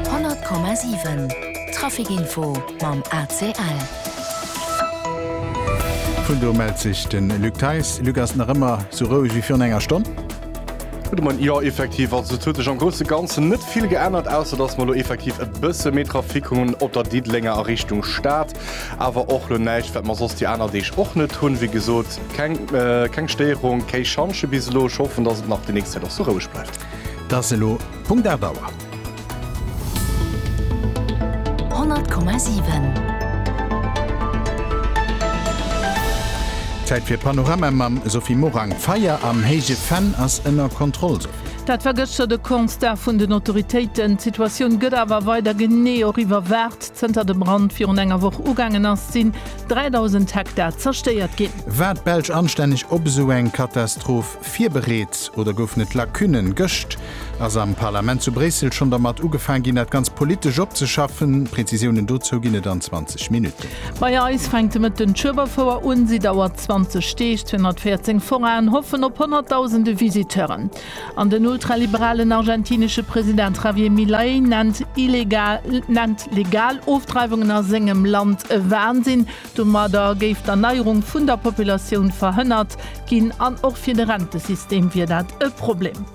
100,7 Traficinfo mam ACL. Vun do mellt sech de Luc Theis. Luc, ass et nach ëmmer sou roueg wéi virun enger Stonn? Gudde Moien, Jo, effektiv. Also et huet sech am grousse Ganzen net vill geännert, ausser datt mer elo effektiv e bësse méi Trafic hunn op der Diddelenger a Richtung Stad. Awer och elo näischt, wat mer soss déi aner Deeg och net hunn. Wéi gesot, keng Stéierung, kéi Schantje bis elo. Ech hoffen, datt et nach déi nächst Zäit och sou roueg bleift. 't ass elo Punkt 8 Auer. 100,7. Zäit fir Panorama mam Sophie Morang. Feier am Héije Venn ass ënner Kontroll, Sophie. Dat war gëschter de Constat vun den Autoritéiten. D'Situatioun gëtt awer weider genee och iwwerwaacht. Zënter de Brand virun enger Woch ugaangen ass, sinn 3.000 Hektar zerstéiert ginn. War d'Belsch anstänneg op esou eng Katastroph virbereet oder goufen et Lacunen? Gëscht ass am Parlament zu Bréissel schonn dermat ugefaang ginn, dat Ganzt politesch opzeschaffen. Prezisiounen dozou ginn et an 20 Minutten. Bei eis fänkt de Mëtten d'Schueberfouer un. Si dauert 20 Deeg. 214 Foraien hoffen op honnertdausende Visiteuren. An den ultraliberalen argentinesche President Javier Milei nennt illegal, nennt legal Ofdreiwungen a sengem Land e Wahnsinn. Domadder géif d'Erneierung vun der Populatioun verhënnert ginn an och fir de Rentesystem wier dat e Problem.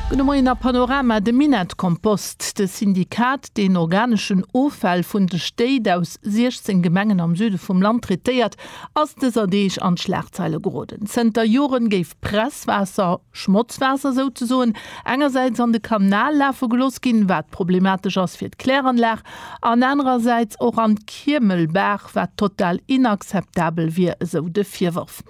Gudde Moien a Panorama, De Minett-Kompost, de Syndikat, deen organeschen Offäll vun de Stéit aus 16 Gemengen am Süde vum Land traitéiert, ass dëser Deeg an d'Schlagzeile geroden. Zënter Joren géif Presswaasser, Schmotzwaasser souzesoen engersäits an de Kanal lafe geloss ginn, wat problematesch ass fir d'Kläranlag, an anerersäits och an d'Kiemelbaach, wat total inakzeptabel wier, esou de Virworf.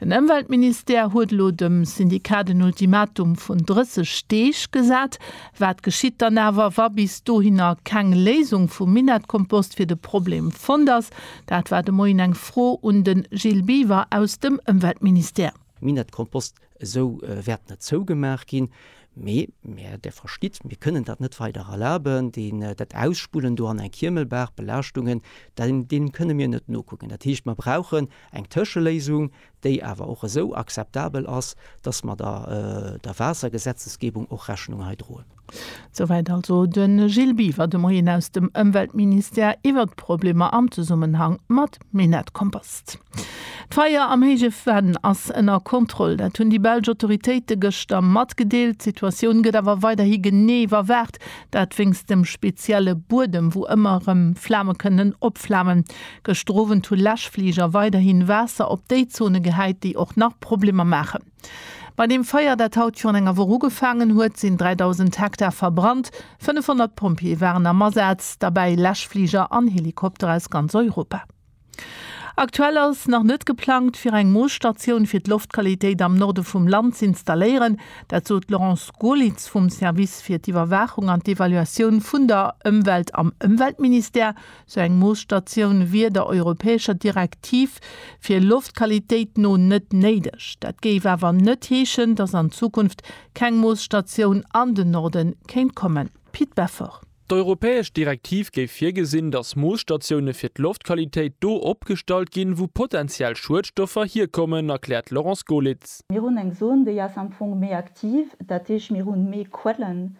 Den Ëmweltministère huet elo dem Syndikat en Ultimatum vun 30 Deeg gesat. Wat geschitt dann awer, wa bis dohinner keng Léisung vum Minettkompost fir de Problem fonnt ass? Dat war de Moien eng Fro un de Gilles Biver aus dem Ëmweltministère. Minettkompost Esou wäert net zougemaach ginn, mee mir, Dir verstitt, mir kënnen dat net weider erlaben, deen, dat Ausspullen do an eng Kiemelbaach, Belaaschtungen, deenen kënne mir net nokucken. Dat heescht, mer brauchen eng Tëscheléisung, déi awer och esou akzeptabel ass, dass mer der Waassergesetzesgebung och Rechnung hei droen. Souwäit also de Gilles Biver de Moien aus dem Ëmweltministère iwwert d'Problemer am Zesummenhang mat Minettskompost. D'Feier am Héije Venn ass ënner Kontroll. Dat hunn déi belsch Autoritéite gëschter matgedeelt. D'Situatioun gëtt awer weiderhi genee iwwerwaacht. Dat wéinst dem spezielle Buedem, wou ëmmer erëm Flame kënnen opflamen. Gëschter Owend hu Läschfliger weiderhi Waasser op déi Zone gehäit, déi och nach Problemer maachen. Bei deem Feier, dat haut virun enger Woch ugefaangen huet, sinn 3.000 Hektar verbrannt. 500 Pompjeeë waren am Asaz, derbäi Läschfliger an Helikopter aus ganz Europa. Aktuell ass nach net geplangt, fir eng Moosstatioun fir d'Loftqualitéit am Norde vum Land z'installéieren. Dat sot d'Laurence Goerlitz vum Service fir d'Iwwerwaachung an d'Evaluatioun vun der Ëmwelt am Ëmweltministère Sou eng Moosstatioun wier der europäescher Direktiv fir Loftqualitéit no net néideg. Dat géif awer net heeschen, datt an Zukunft keng Moosstatioun an den Norde kéint kommen. Pit Beffort. D'europäesch Direktiv géif virgesinn, datt Moosstatioune fir d'Loftqualitéit do opgestallt ginn, wou potentiell Schuedstoffer hierkommen, erkläert d'Laurence Goelitz. Mir hunn eng Zon, déi ass am Fong méi aktiv, dat heesch mir hu méi Quellen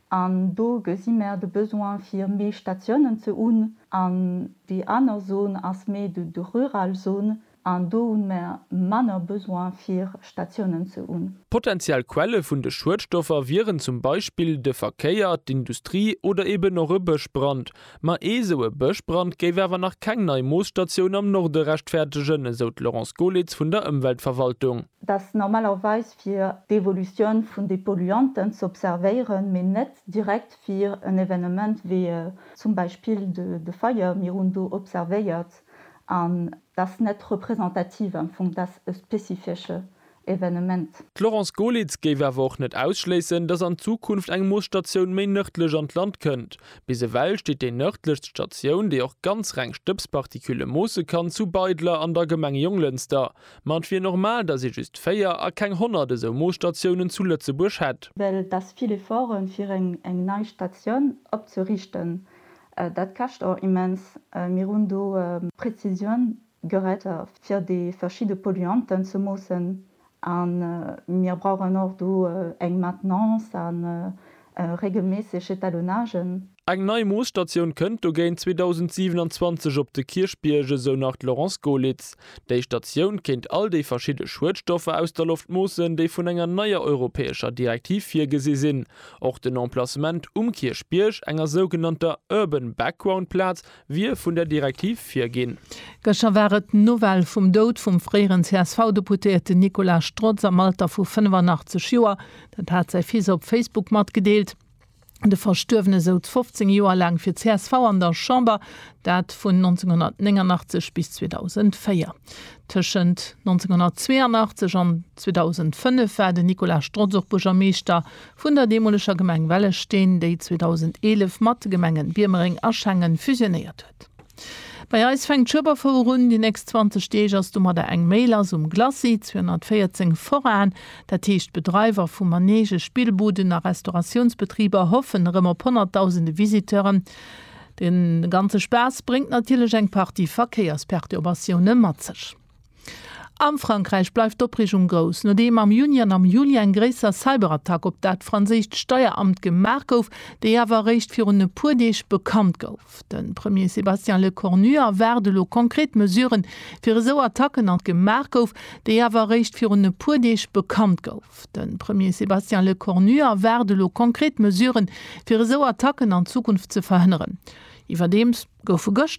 An do gesi mär de Besoin fir méi Statiounen ze un. An déi aner Zone ass méi de rural Zone an do hu mär manner Besoin fir Statiounen ze un. Potentiell Quelle vun de Schuedstoffer wieren zum Beispill de Verkéier, d'Industrie oder eben och e Bëschbrand. Ma ee sou e Bëschbrand géif awer nach keng nei Moosstatioun am Norde rechtfertegen, esou d'Laurence Golitz vun der Ëmweltverwaltung. dass normalerweis fir d'Evolutioun vun de Polluanten ze observéieren, mee net direkt fir en Evenement wéi zum Beispill de Feier, mir hunn do observéiert, an dass net representativ am Fong, dass e spezifesche Evenement. D'Laurence Golitz géif awer och net ausschléissen, dass an Zukunft eng Moosstatioun méi nërdlech an d'Land kënnt. Bis ewell steet déi nërdlechst Statioun, déi och ganz reng Stëbspartikule moosse kann, zu Beidler an der Gemeng Jonglënster. Ma et wier normal, datt ee just 4 a keng 100 esou Moosstatiounen zu Lëtzebuerg hätt. Well et ass vill Efforte fir eng nei Statioun opzerichten. Dat käscht och immens. Mir hunn do Präzisioun gerett fir déi verschidde Polluanten ze moossen. A mir brauchen och do eng Maintenance a regelméisseg Etalonnagen. Eng nei Moosstatioun kënnt dogéint 2027 op de Kierchbierg, esou nach d'Laurence Goelitz. Déi Statioun kéint all déi verschidde Schuedstoffer aus der Loft moossen, déi vun enger neier europäescher Direktiv virgesi sinn. Och den Emplacement um Kierchbierg, enger sougenannter Urban Background Plaz, wier vun der Direktiv virginn. Gëschter war et d'Nouvelle vum Doud vum fréieren CSV-Deputéierten Nicolas Strotz am Alter vu 85 Joer. Dat hat säi Fils op Facebook matgedeelt. De Verstuerwene souz 15 Joer laang fir csv an der Chamber, dat vun 1989 bis 2004. Tëschent 1982 an 2005 war den Nicolas Strotz och Buergermeeschter vun der deemoleger Gemeng Wellesteen, déi 2011 mat de Gemengen Biermereng a Schengen fusionéiert huet. Rezept. Bei eis fänkt Schueberfouer un, déi nächst 20 Deeg ass domadder eng méi lass um Glacis 214 Forain. Dat heescht d'Bedreiwer vu Manege, Spillbuden a Restauratiounsbetriber hoffen erëm op honnertdausende Visiteuren. De ganze Spaass bréngt natierlech eng Partie Verkéiersperturbatioune mat sech. A Frankräich bleift d'Opreegung grouss, nodeem am Juni an am Juli eng gréisser Cyberattack op dat franséischt Steieramt gemaach gouf, déi awer eréischt virun e puer Deeg bekannt gouf. De Premier Sébastien Lecornu erwaart elo konkret Mesuren, fir esou Attacken an gemaach gouf, déi awer eréischt virun e puer Deeg bekannt gouf. De Premier Sébastien Lecornu erwaart elo konkret Mesuren, fir esou Attacken an Zukunft ze verhënneren. Iwwerdeems goufe gëschter.